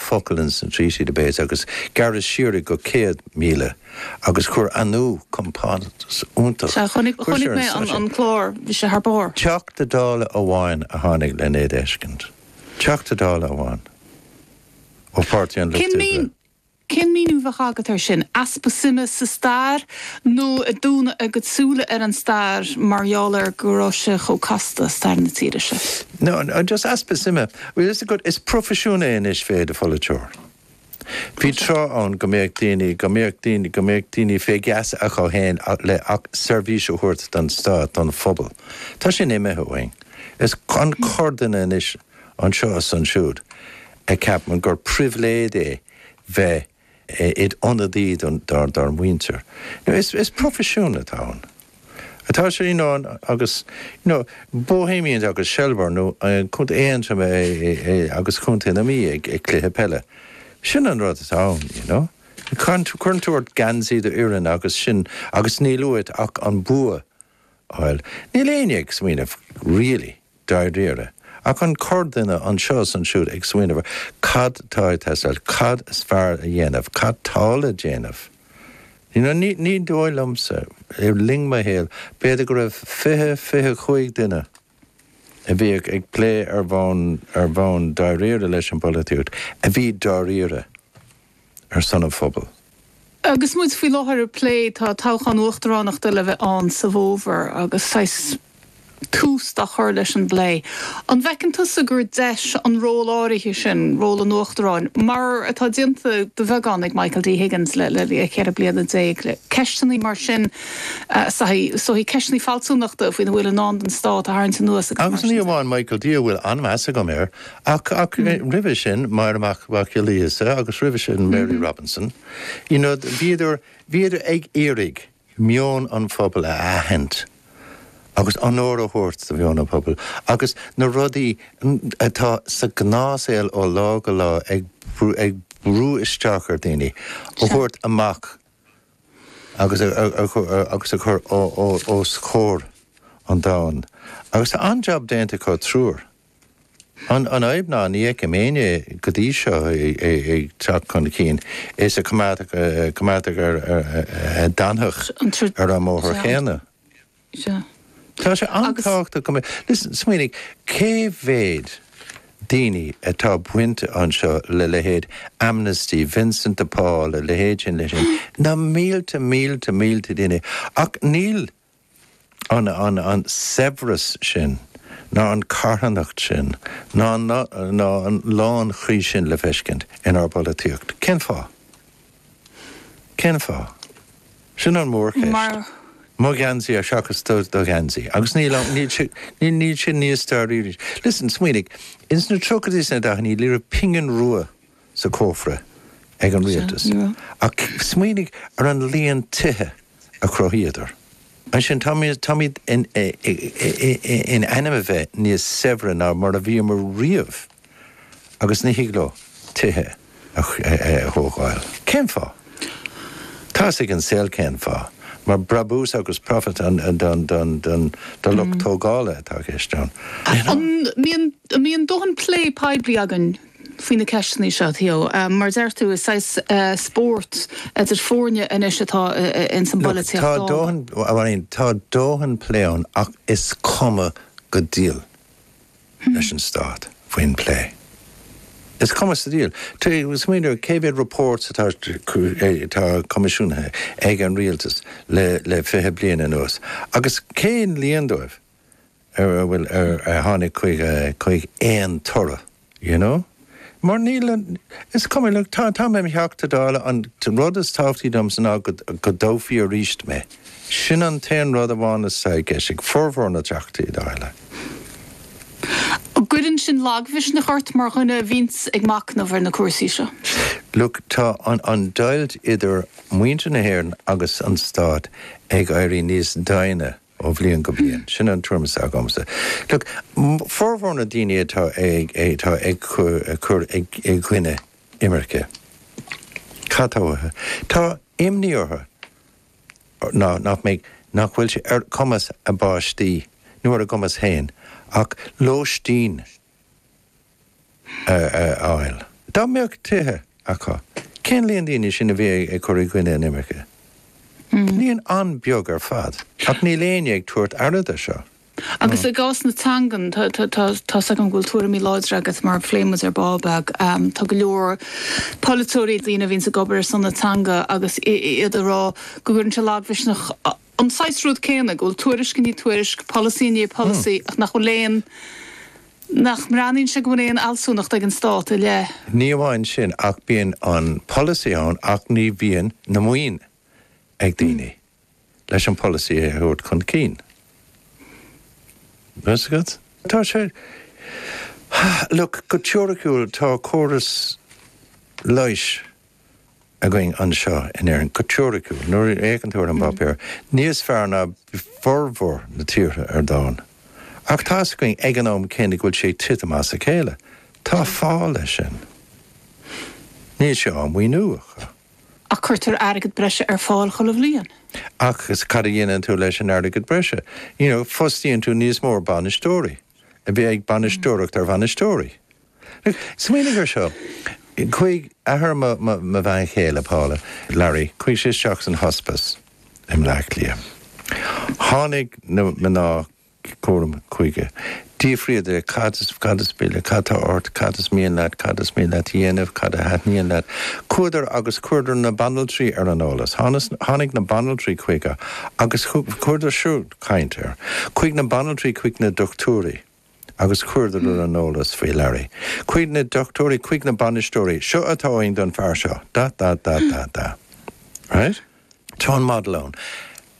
focal ins an Treaty do b'é agus gearradh siar é go céad míle agus chuir Anú compántas iontach. Sea, chonaic, chonaic mé an, an clár, bhí sé thar barr. Teachta Dála amháin a tháinig len é d'fheiscint. Teachta Dála amháin ó Pháirtí an Lucht Oibre. Cén míniú a bheadh agat air sin? Easpa suime sa stair nó ag dúnadh a gcuid súile ar an stair mar gheall ar go raibh sé chomh casta, stair na tíre seo? No, just easpa suime. Well, is agat, is profisiún é anois bheith id pholaiteoir. Bhí tráth ann go mbéadh daoine, go mbéadh daoine, go mbéadh daoine fé gheasa acu fhéin le seirbhís a thabhairt don Stát, don phobal. Tá sin imithe uainn. Is an corrdhuine anois anseo is ansiúd a ceapann gur pribhléid é bheith id ionadaí dár muintir. Is proifisiún atá ann. Tá sé you know agus you know Bohemians agus Shelbourne nó contae Aontroim agus contae na Mí ag cluiche peile. Sin an rud atá ann you know. Cuireann tú ort geansaí do fhoireann agus sin agus níl uait ach an bua. Bhuel, níl éinne ag smaoineamh, really, dáiríre, ach an corrdhuine anseo is ansiúd ag smaoineamh ar cad tá ag teastáil, cad is fearr a dhéanamh, cad tá le déanamh. You know, ní dóigh liomsa, le linn mo shaoil, b'fhéidir go raibh fiche, fiche cúig duine a bhí ag plé ar bhonn, ar bhonn dáiríre leis an bpolaitíocht, a bhí dáiríre. ar son an phobail. Agus muid faoi láthair ag plé, tá toghchán uachtaránachta le bheith ann sa bhfómhar agus saghas tús dá chur leis an bplé. An bhfeiceann tusa gur deis an ról áirithe sin, ról an uachtaráin, mar atá déanta de bheagán ag Michael D Higgins le ceithre bliana déag, le ceisteanna mar sin, saghas ceisteanna fealsúnachta faoina bhfuil i ndán don Stát, a tharraingt anuas agus mar sin de? Agus ní amháin Michael D, a bhfuil an-mheas agam air, Ach roimhe sin, Máire Mhac Giolla Íosa agus roimhe sin Mary Robinson, you know, bhíodar, bhíodar ag iarraidh meon an phobail a aithint agus onóir a thabhairt do mheon an phobail agus na rudaí atá sa gnáthsaol ó lá go lá ag, ag brú isteach ar daoine, a thabhairt amach agus agus a chur os comhair an domhain. Agus tá an-jab déanta acu triúr. An fhadhb ná ní fheicim éinne go dtí seo ag teacht chun cinn is ag coimeád, a d'fhanfadh ar an mbóthar chéanna. Tá sé an-tábhachtach go mbeadh, listen, smaoinigh, cé mhéad daoine atá bainte anseo le leithéid Amnesty, Vincent de Paul, a leithéid sin, leithéid sin, na mílte, mílte, mílte daoine ach níl, an saibhreas sin ná an carthanacht sin ná ná an lánchroí sin le feiscint inár bpolaitíocht. Cén fáth? Cén fáth? Sin an mhórcheist. Mo gheansaí ar seachas do do gheansaí. Agus níl ann níl si níl si níos stairiúil. Listen, smaoinigh, ins na tríochaidí is na daicheannaí, ní raibh pingin rua sa cófra ag an rialtas. Ach smaoinigh ar an líon tithe a chruthaíodar. Ansin, tá táimid in ainm a bheith níos saibhre ná mar a bhíomar riamh agus ní thig leo tithe a thógáil. Cén fáth? Tá 'fhios ag an saol cén fáth. Mar brabús agus profit don don do lucht tógála atá i gceist ann. An mbíonn dóthain plé poiblí againn? faoi na ceisteanna seo, Theo. Mar a deir tú, is saghas spóirt idir foirne anois atá ins an bpolaitíocht Look, tá dóthain, a Mháirín, tá dóthain plé ann ach is cuma sa diabhal leis an Stát faoin bplé. Is cuma sa diabhal. Tuigim, smaoineamh cé mhéad reports atá atá coimisiúnaithe ag an Rialtas le le fiche bliain anuas agus cén líon díobh ar a bhfuil ar ar tháinig chuig chuig aon toradh you know mar níl, is cuma look tá tá mé im' Theachta Dála an rud is tábhachtaí domsa ná go go dtoghfaí arís mé sin an t-aon rud amháin atá i gceist ag formhór na dTeachtaí Dála. An gcuireann sin lagmhisneach ort mar dhuine a bhíonns ag machnamh ar na cúrsaí seo? Look tá an an deighilt idir muintir na hÉireann agus an Stát ag éirí níos doimhne Ó bhliain go bliain. Sin an treo atá agamsa. Look, formhór na ndaoine atá atá ag cur i gcoinne imirce, cad tá uathu? Tá imní orthu nach mbeidh, nach bhfuil sé ar chumas a bpáistí, nó ar a gcumas féin, ach lóistín a a fháil. Dá mbeadh tithe acu, cén líon díobh sin a bhí ag cur i gcoinne an imirce? Líon an-bheag ar fad. Ach níl éinne ag tabhairt aird air seo. Agus i gcás na teangan, tá 's agam go bhfuil tuairimí láidre agat mar phléigh muid ar Ball Beag. Tá go leor polaiteoirí, daoine a bhíonns ag obair ar son na teanga agus iad ag rá go gcuireann sé lagmhisneach an saghas rud céanna, go bhfuil tuairisc i ndiaidh tuairisc, polasaí i ndiaidh polasaí ach nach bhfuil aon, nach mbreathnaíonn sé go bhfuil aon fhealsúnacht ag an Stát i leith. Ní amháin sin ach bíonn an polasaí ann ach ní bhíonn an mhaoin ag daoine leis an polasaí a thabhairt chun cinn. Tá fhios agat? Tá sé, look, go teoiriciúil tá córas leighis, againn anseo in Éirinn, go teoiriciúil, nuair a fhéacann tú ar an bpáipéar, níos fearr ná formhór na tíortha ar domhan. Ach tá fhios againn ag an am céanna go bhfuil sé ag titim as a chéile. Tá fáth leis sin. Níl sé á mhaoiniú acu. Ach cuirtear airgead breise ar fáil chuile bhliain. Ach cad a dhéanann tú leis an airgead breise? You know, fostaíonn tú níos mó bainisteoirí. A bheith ag bainisteoireacht ar bhainisteoirí. Smaoinigh ar seo. Chuaigh athair mo bhean chéile, Paula, Larry, chuaigh sé isteach san Hospice i mBleá Cliath. Tháinig na mná cúraim chuige. D'fhiafraíodar cad is cad is pille, cad tá ort, cad is mian leat, cad is mian leat a dhéanamh, cad a thaitníonn leat. Chuadar agus chuireadar na banaltraí ar an eolas. Tháinig na banaltraí chuige agus chuireadar siúd caint air. Chuaigh na banaltraí chuig na dochtúirí. agus chuireadar ar an eolas faoi Larry. Chuaigh na dochtúirí, chuig na bainisteoirí, seo atá againn don fear seo, da da da da da. Right? Tá an model ann.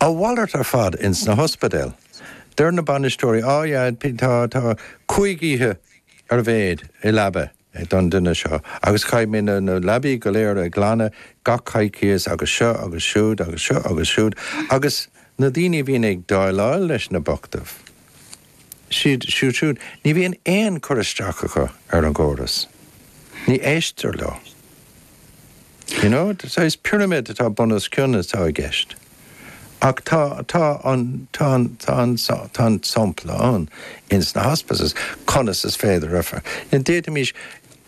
A mhalairt ar fad ins na hospidéil. Deir na bainisteoirí, á yeah, tá, tá, cúig oíche ar a mhéid i leaba. é don duine seo. Agus caithfimid na leabaí go léir a ghlanadh gach coicíos agus seo agus siúd agus seo agus siúd agus na daoine a bhíonn ag déileáil leis na bochtáin, iad siúd siúd, ní bhíonn aon chur isteach acu ar an gcóras. Ní éistear leo. You know? Saghas pirimid atá bunoscionn atá i gceist. Ach tá, tá an, tá an, tá an, tá an sampla ann ins na hospices, conas is féidir a, d'fhéadfaimís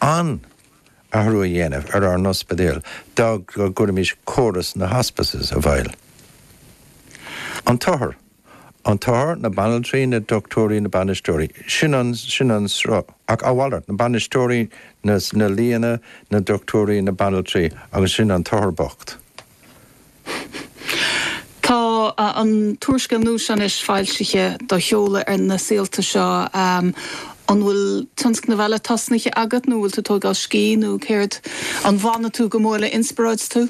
an-athrú a dhéanamh ar ár n-ospidéal dá gcuirimís córas na hospices i bhfeidhm. An t-othar, an t-othar, na banaltraí, na dochtúirí, na bainisteoirí, sin an, sin an sruth, ach a mhalairt, na bainisteoirí, na, na lianna, na dochtúirí, na banaltraí agus sin an t-othar bocht. Tá an t-úrscéal nua seo anois foilsithe á sheoladh ar na saolta seo. An bhfuil tionscnaimh eile tosnaithe agat nó an bhfuil tú ag tógáil scíth nó céard? An bhfanann tú go mór le inspioráid tú?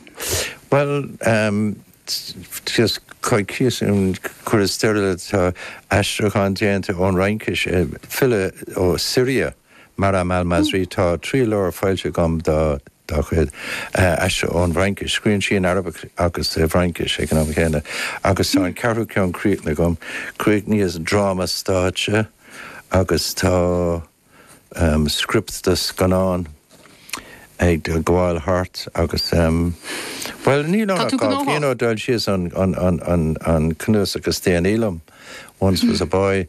Bhuel, cuireadh stair le, tá aistriúchán déanta ón Fhraincis, file ó Siria, Maram al-Masri, tá trí leabhar foilsithe agam dá chuid, aistrithe ón bhFraincis. Scríonn sí in Araibis agus i bhFraincis ag an am céanna. Agus tá an ceathrú ceann críochnaithe agam. Chríochnaíos dráma stáitse agus tá scriopt do scannán ag gabháil thart agus, bhuel, níl ann ach dhá bhliain ó d'fhoilsíos an cnuasach is déanaí liom, Once Was A Boy.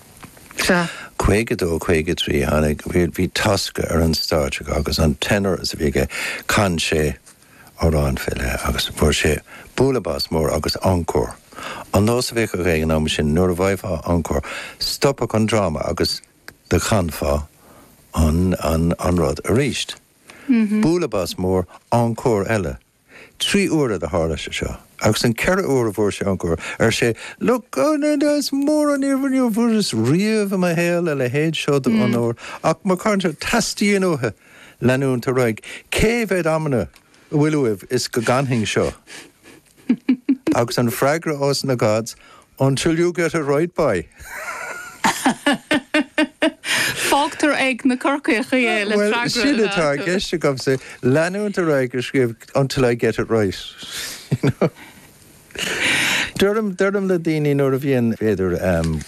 Sea. 52, 53, Tháinig, bhí, bhí Tosca ar an stáitse acu agus an tenor is a bhí aige, chan sé amhráin fé leith agus fuair sé bualadh bos mór agus encore. An nós a bhíodh acu ag an am sin nuair a gheofá encore, stopfadh an dráma agus do chanfá an, an, an rud aríst. Bualadh bos mór, encore eile. Trí huaire do tharla sé seo agus an ceithre uair a fuair sé encore, ar sé, Look, is mór an onóir, ní bhfuaireas riamh i mo shaol a leithéid seo d'onóir ach mo chairde anso teastaíonn uathu leanúint ar aghaidh cé mhéad amanna atá uaibh is go gcanfainn seo. Agus an freagra os na Gods, Until you get it right, boy! Fágtar ag na Corcaígh é le freagra a bheith acu. Bhuel, sin atá i gceist agamsa, leanúint ar aghaidh ag scríobh until I get it right, you know. Deirim le daoine nuair a bhíonn, b'fhéidir,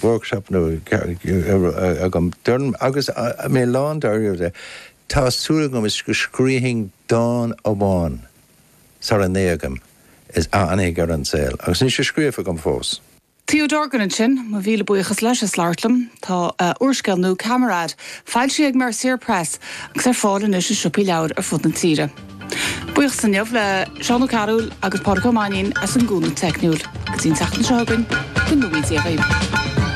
workshop nua agam, deirim, agus mé lán dáiríre de, tá súil agam is go scríobfainn dán amháin. sar a n-éagfad is a fhanfaidh ar an saol, agus níl sé scríofa agam fós. Theo Dorgan ansin, mo mhíle buíochas leis as labhairt liom. Tá a úrscéal nua Camarade, foilsithe ag Mercier Press agus ar fáil anois i siopaí leabhair ar fud na tíre. Buíochas inniu le Seán Ó Cearúill agus Pádraig Ó Mainnín as an gcúnamh teicniúil. Go dtí an tseachtain seo chugainn, go mba Dé dhaoibh.